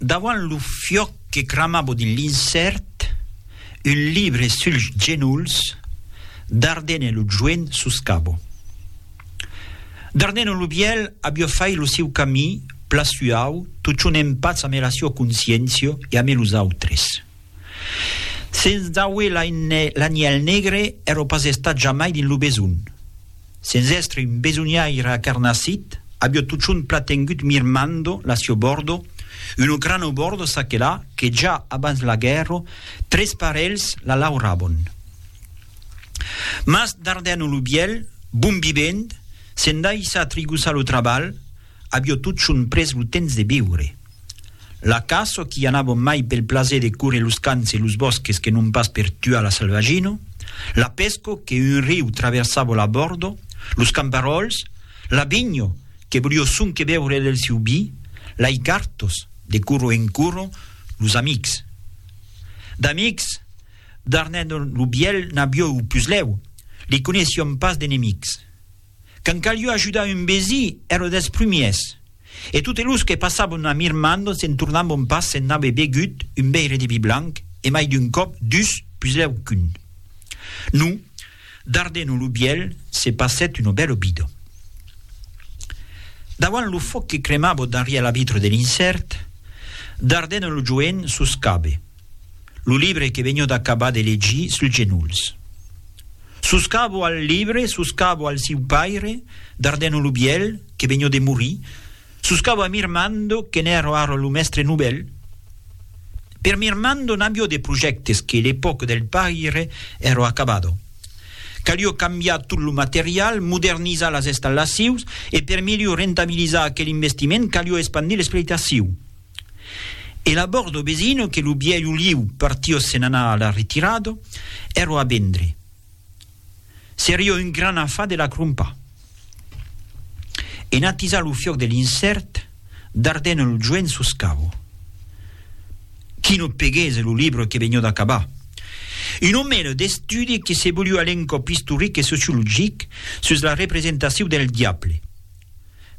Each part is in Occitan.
Davant lo fiòc que cramavo dins l'insèrt, un libre suls genolhs, Dardenne lo joen sus cabo. Dardenne lo vièlh avió fait lo siu camí, pla suau, totjorn en patz ame la siua consciéncia e ame los autres. Sens dauer l'anièl negre, èro pas estat jamai dins lo besonh. Sens èstre un besonhaire acarnassit, avió totjorn platengut mirmando la sieu bòrdo, una grana bòrdo çaquelà que ja abans la guèrra tres parelhs la laurabon. Mas Dardèno lo bièlh, bon vivent, se'n daissa trigossar lo trabalh, Avió totjorn pres lo temps de viure. La caça, qu'i anàvon mai pel plaser de córrer los camps e los bòsques que non pas per tuar la salvagina, la pesca, que un riu traversava la bòrda, los camparòls, la vinha, que volió sonque beure del siu vi, lei cartas, de coro en coro, los amics. D'amics, d'Arnèdon lo Vièlh n'avió eu puslèu, li coneissión pas d'enemics. Quand calió ajudar un vesí, ère des prumiers. E totes los que passabon a Mirmandon se'n tornabon pas se'n n'ave begut un veire de vi blanc, e mai d'un còp dus, puslèu qu'un. Nu, Dardeno lo Vièlh, se passèt una bèla vida. Davant lo fòc que cremava darrièr la vitra de l'incèrt, Dardeno lo Joen soscabe. Lo libre que venho d'acabar de legir suls genolhs. Soscavo al libre, soscavo al siu paire, Dardeno lo Bièlh, que venho de morir, soscavo a Mirmando, que n'èra ara lo mèstre novèl. Per Mirmando n'avió de projèctes que l'epòca del paire èra acabada. Calió cambiar tot lo material, modernizar las estallacions e per milior rentabilizar aquel investiment calió espandir l'espletaciu. E la bòrd o besino que lo bièlh oliu partio se n'anà a la retirado, èr'o a bendre. Serio un gran afà de la crompar. En atisar lo fiòc de l'incèrt, dardèn el joen sus cau. Qui no peguèsse lo libre que vegnió d'acabar. Un omèle d'estudi que se voliu a l'encòp istoric e sociologic sus la representasiu del diable.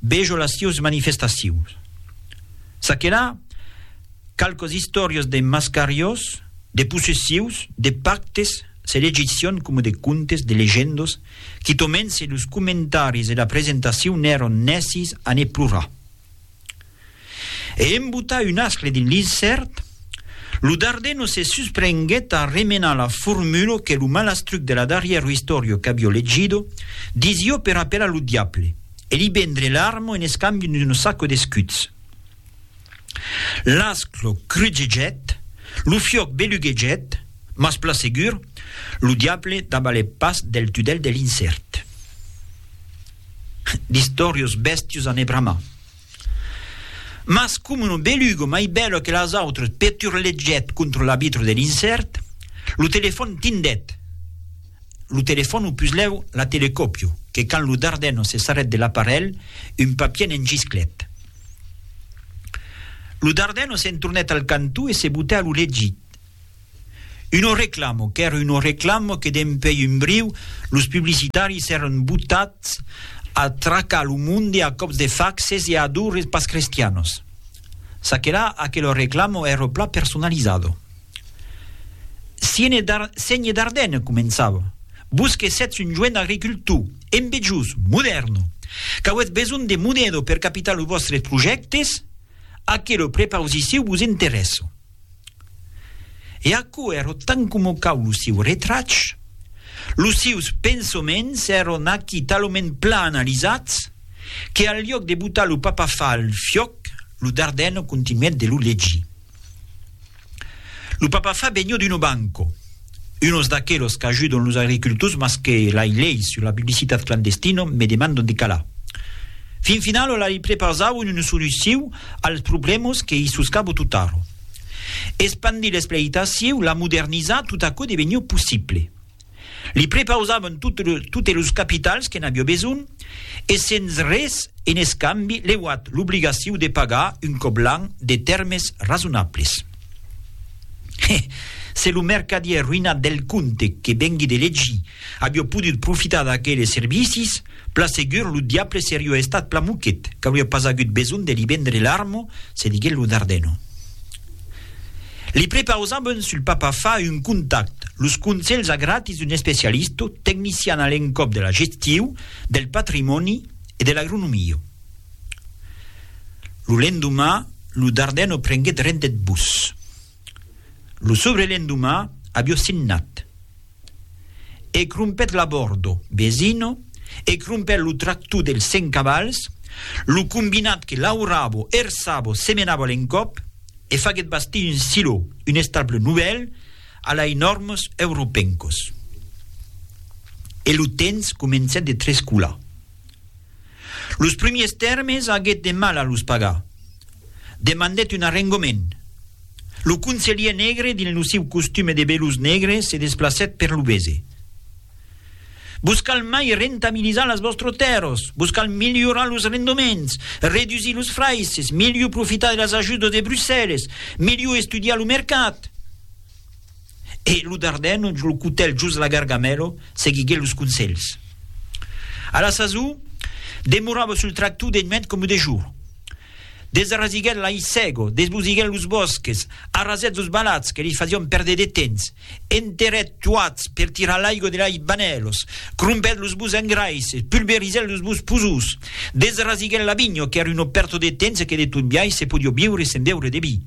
Vejo las sieus manifestacions. Ça que la, qualques istòrias de mascariós, de possessius, de pactes, se legicion coma de contes, de legendos, quitomènse los comentaris e la presentacion n'èron nècis a ne plorar. e en botar un ascle dins l'insèrt, lo darder no se susprenguèt a remenar la formula que lo malastruc de la darrièro istòria qu'avió legido disió per apelar lo diable e li vendre l'arma en escambi d'un saco d'escuts. L'ascle crugegèt, lo fiòc beluguegèt, mas plan segur, lo diable dabalèt pas del tudèl de l'insèrt. D'istòrios bèstios a ne bramar. Mas coma un belugo mai bèlo que las autres peturlegèt contra la vitra de l'insèrt, lo telefòn tindèt. Lo telefòn o puslèu la telecòpio, que quand lo dardeno se sarrèt de l'aparelh, un papier ne'n gisclèt. Lo dardeno s'entornèt al cantó e se botèt a lo legit. Uno reclamo, qu'ère uno reclamo que dempèi un briu los publicitaris èran botats a tracar lo monde a còps de faxes e a dures pas crestianos. Çaquelà, aquelo reclamo èra plan personalizado. Siene Dar, Sénhe Dardenne, començava, vos que sètz un joen agricultor, embejós, modèrno, qu'auètz besonh de monedo per capitar los vòstres projèctes, aquelo prepausiciu vos interèssa. E aquò èro tant coma cau lo sieu retrach, los sieus pensoments èron aquí talament plan analizats que al liòc de botar lo papafar al fiòc, lo Dardeno continuèt de lo legir. Lo papafar benhò d'uno banco. Unos d'aquelos qu'ajudon los agricultors mas que lai leis sus la publicitat clandestina me demandon de calar. Fin finala lai prepausau una solucion als problèmas que i suscabo tot ara. Espandir l'espleitacion, la modernizar, tot aquò deveniá possible. Li prepausavan totes los capitals que n'aviá besonh e sens res en escambi leuat l'obligacion de pagar un còp l'an de tèrmes rasonables. He! Se lo mercadièr roïnat del comte que vengui de legir avió podut profitar d'aqueles servicis, plan segur lo diable serió estat plan moquet qu'aurió pas agut besonh de li vendre l'armo, se diguèt lo Dardeno. Li prepausàvem sul papa fa un contact, los conselhs a gratis d'un especialisto, tecnician a l'encòp de la gestiu, del patrimòni e de l'agronomia. Lo lendomà, lo Darden o prenguèt rent deth bus. Lo sobrelendomà avió signat. E crompèt l'abordo, Besino, e crompèt lo tractor dels cent cavals, lo combinat que lauravo, hersavo, semenavo a l'encòp, e faguèt bastir un silo, un estable novèl, a lai nòrmos europencos. E lo temps comencèt de trescolar. Los primiers tèrmes aguèt de mal a los pagar. Demandèt un arrengament. Lo conselhièr negre, dins lo siu costume de belus negre, se desplacèt per lo bese. Vos cal mai rentabilizar las vòstros tèrros, vos cal milhorar los rendoments, redusir los fraisses, milhor profitar de las ajudas de Brussèlles, milhor estudiar lo mercat. E lo Dardeno, lo cotèl jos la gargamèla, seguiguèt los conselhs. A la sasor, demorava sul tractor de nuèch coma de jorn. Desarrasiguèt l'aissèga, desbosiguèt los bòsques, arrasèt los balats que li fasián pèrdre de temps, enterrèt tuats per tirar l'aiga de lei banèlas, crompèt los bos engraisses, pulverizèt los bos posós, desarrasiguèt la vinha qu'èra una pèrta de temps e que de tot biais se podiá viure sen beure de vi.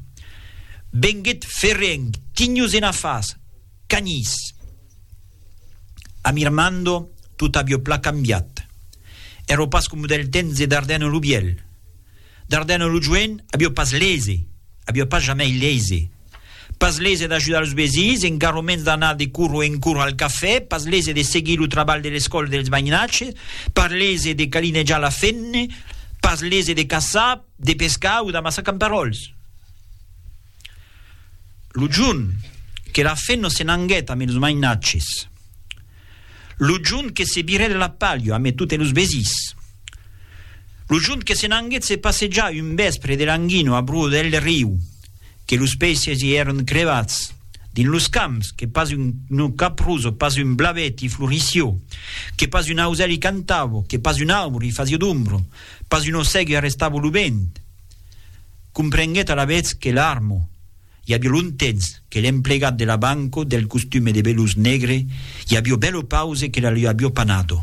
Venguèt ferrenc, tinhos ena fas, canhís. Amirmando, tot avió plan cambiat. Èró pas coma del temps de Dardenne lo Vielh. Dardenne lo Joen avió pas lese, avió pas jamei lese. Pas lese d'ajudar los vesins, engarro mens d'anar de curro en curro al cafè, pas lese de seguir lo trabalh de l'escòla dels mainatges, pas lese de calinejar la fenne, pas lese de caçar, De pescar o d'amassar camperòls. Lo jorn que la fenno se n'anguèt amé los mainatges. Lo jorn que se virèt la palha amé totes los vesins. Lo jorn que se n'anguèt se passejar un vèspre de languino a bruò del riu, que los peisses i èron crevats, dins los camps, que pas un no caprós, pas un blavet i florissió, que pas un ausèl i cantavo, que pas un aubro i fasió d'ombro, Pas un ossègue arrestava lo vent. Comprenguèt alavetz que l'armo, i aviá longtemps que l'emplegat de la banco del costume de veluz negre i avió bèlo pause que la li avió panado.